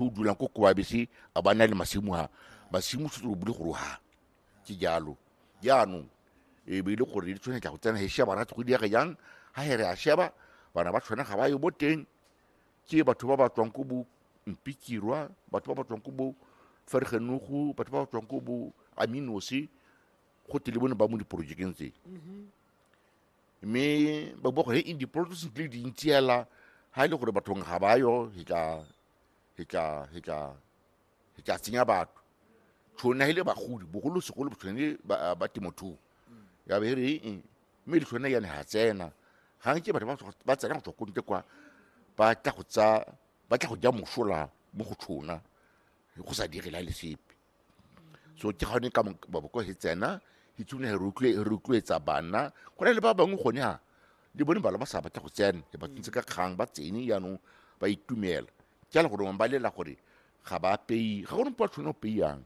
o dulang ko koabese a ba na le masimo a masimo se tlo bule gore ha ke jalo jaanong e be e le gore di tshwanetse go tsena he sheba ra go diege jang ha here a sheba bana ba tshwana ga ba yo bo teng ke batho ba ba tswang ko bo mpikirwa batho ba ba tswang ko bo fergenogo batho ba ba tswang ko bo aminosi go tele bone ba mo diporojekeng tse mme ba bua gore he in diporojeke le dintsi hela ha e le gore bathong ga ba yo e tla re tla re tla re tla tsenya batho tshone hele bagodi bogolo segolo tshone ba ba temothuo ya be re eng mme le tshone yane ha tsena ga nke batho ba tswa- ba tsena go tswa ko ntle kwa ba tla go tsa ba tla go ja mosola mo go tshona go sa direla le sepe so ke gone ka maboko he tsena he tsone he rotloetsa bana go na le ba bangwe gone ha le bone bala ba sa batla go tsena e ba tsentse ka kgang ba tsene jaanong ba itumela ke ala gore ba lela gore ga ba pei ga gone mpo a tshwane go peiyang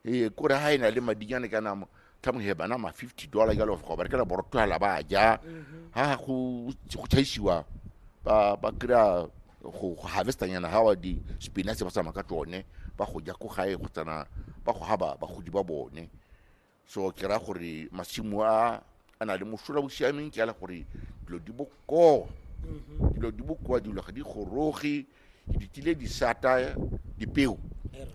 ee kore ga e na le madinyane kana tla mo heba nama fifty dollar jalo go berekela borotwala ba ja ha go go tšhaisiwa ba ba kry-a go go harvestanyana ga wa di-spinach ba tsamaya ka tsone ba go ja ko gae go tsana ba go haba bagodi ba bone so ke ra gore masimo a a na le mosola bo siameng ke ala gore dilo di bokoa dilo di bokoa dilo ga di goroge di tsile di sata dipeo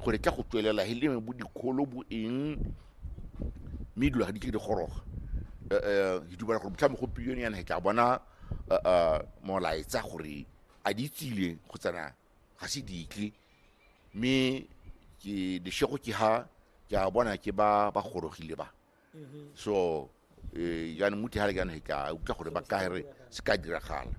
gore tla go tswelela he leme bo dikgolo bo eng mme dilo ga di tle di goroga um ke dumela gore botlhame go pilione yana he tla bona eh, eh, molaetsa gore a di tsile go tsena ga se ditle mme ke leshego ke ha ke a bona ke ba ba gorogile ba so eh, jaanong muti ga le jaanong ke a utlwa gore ba ka re se ka diragala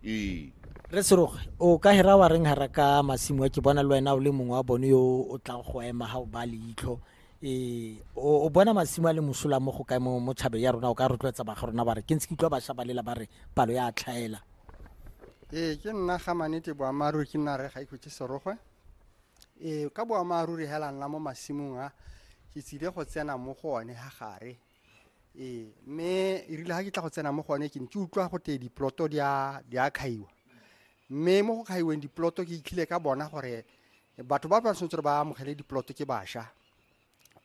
ee re seroge o ka hera wa reng hara ka masimo a ke bona le wena o le mongwe wa bone yo o tlang go ema ga o ba leitlho ee o o bona masimo a le mosola mo go kae mo mo tšhabeng ya rona o ka rotloetsa baga rona ba re ke ntse ke utlwa bašwa ba lela ba re palo ya tlhaela ee ke nna ga manete boammaaruri ke nna re ga ikhutse serogwe Ee, ka boammaaruri hela nna mo masimong a ke tsile go tsena mo go one ha gare ee mme e rile ga ke tla go tsena mo go one ke ne ke utlwa go tee diploto di a di a kgaiwa mme mo go kgaiweng diploto ke itlhile ka bona gore batho ba ba tshwanetse gore ba amogele diploto ke basha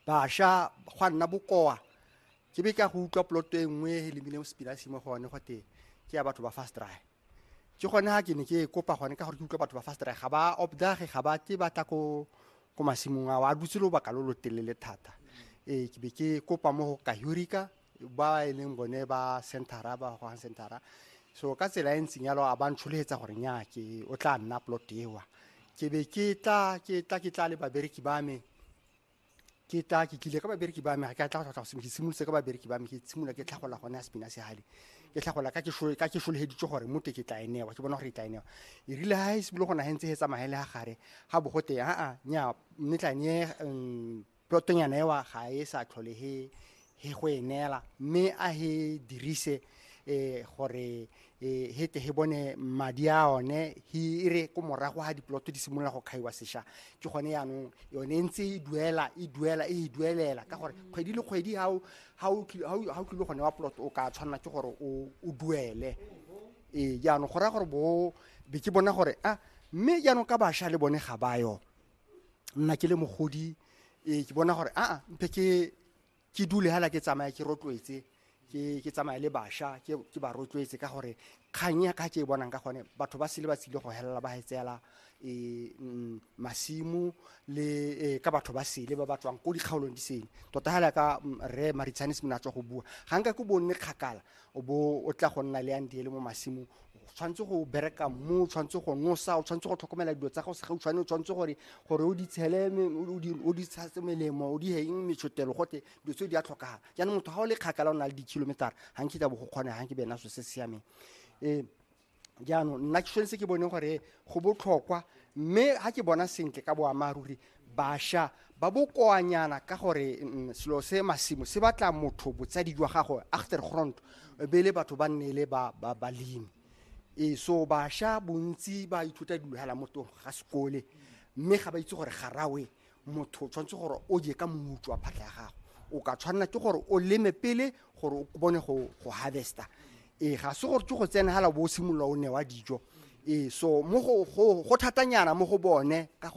Basha gwa nna bokoa ke be ka go utlwa poloto e nngwe e lemileng sepinasi mo go one gote ke ya batho ba fast dry ke gone ga ke ne ke kopa gone ka gore ke utlwa batho ba fast dry ga ba obdage ga ba ke ba tla ko ko masimong ao a dutse lobaka lo lo telele thata ee ke be ke kopa mo go kahurika ba e leng bone ba centera ba gogang centera so ka tsela e ntseng yalo a ba ntsholegetsa gore nya ke o tla nna plot ewa ke be ke tla ke tla ke tla le babereki ba me ke tla ke tlile ka babereki ba me ga ke tla go tlhotlha ke simolotse ka babereki ba me ke tshimola ke tlhagola gone ya sepina se gale ke tlhagola ka ke solegeditse gore mote ke tla enewa ke bona gore e tla enewa e rile ga e sebolo go nagentse e tsamagele ga gare ga bogote aa nya mme tla ne um, Plotonyana ewa ga e sa tlhole he he go e neela mme a he dirise eh, gore eh, he tle he bone madi a one he e re ko morago ga diploto di simolola go kgaiwa sesha ke gone yaanong yone e ntse e duela e duela e e duelela ka gore kgwedi le kgwedi ga o- ga o kil- ga o ga o kile gone wa ploto o ka tshwanela ke gore o o duele ee jaanong go raya gore bo be ke bona gore a mme jaanong ka bašwa le bone ga ba yo nna ke le mogodi e ke bona gore aa mpe ke ke dule hala ke tsamaya ke rotloetse ke ke tsamaya le basha ke ke ba rotloetse ka gore kgang ya ka ke e bonang ka gone batho ba sele ba tsile go helela ba hetseela e mm, masimu le e, ka batho ba sele ba ba tswang ko dikgaolong di sele tota hala ka mm, rre maritshane se mona a tswa go bua ga nka ko bonne kgakala o bo o tla go nna le yang diele mo masimong o tshwanetse go bereka mmu o tshwanetse go nosa o tshwanetse go tlhokomela dilo tsa gago segautshwane o tshwanetse gore gore o di tshele me- o di- o di tshase melemo o di heng metshotelo gote dilo tseo di a tlhokagala jaanong motho ga o le kgakala o na le di-kilometer ga nkitla bo go kgona ga nke bena so se siameng um jaanong nna ke tshwanetse ke bone gore go botlhokwa mme ga ke bona sentle ka boammaaruri basha ba bokoanyana ka gore mm, selo se masimo se batla motho botsadi jwa gago after grond be le batho ba nne le ba- ba- balemi ee so basha bontsi ba ithuta dilo hela mo tong ga sekole mme ga ba itse gore garawe motho o tshwanetse gore o je ka moutswa wa phatlha ya gago o ka tshwanela ke gore o leme pele gore o bone go go harvesta ee ga se gore ke go tsena hala bo o simolola o newa dijo ee so mo go go go thatanyana mo go bone ka gore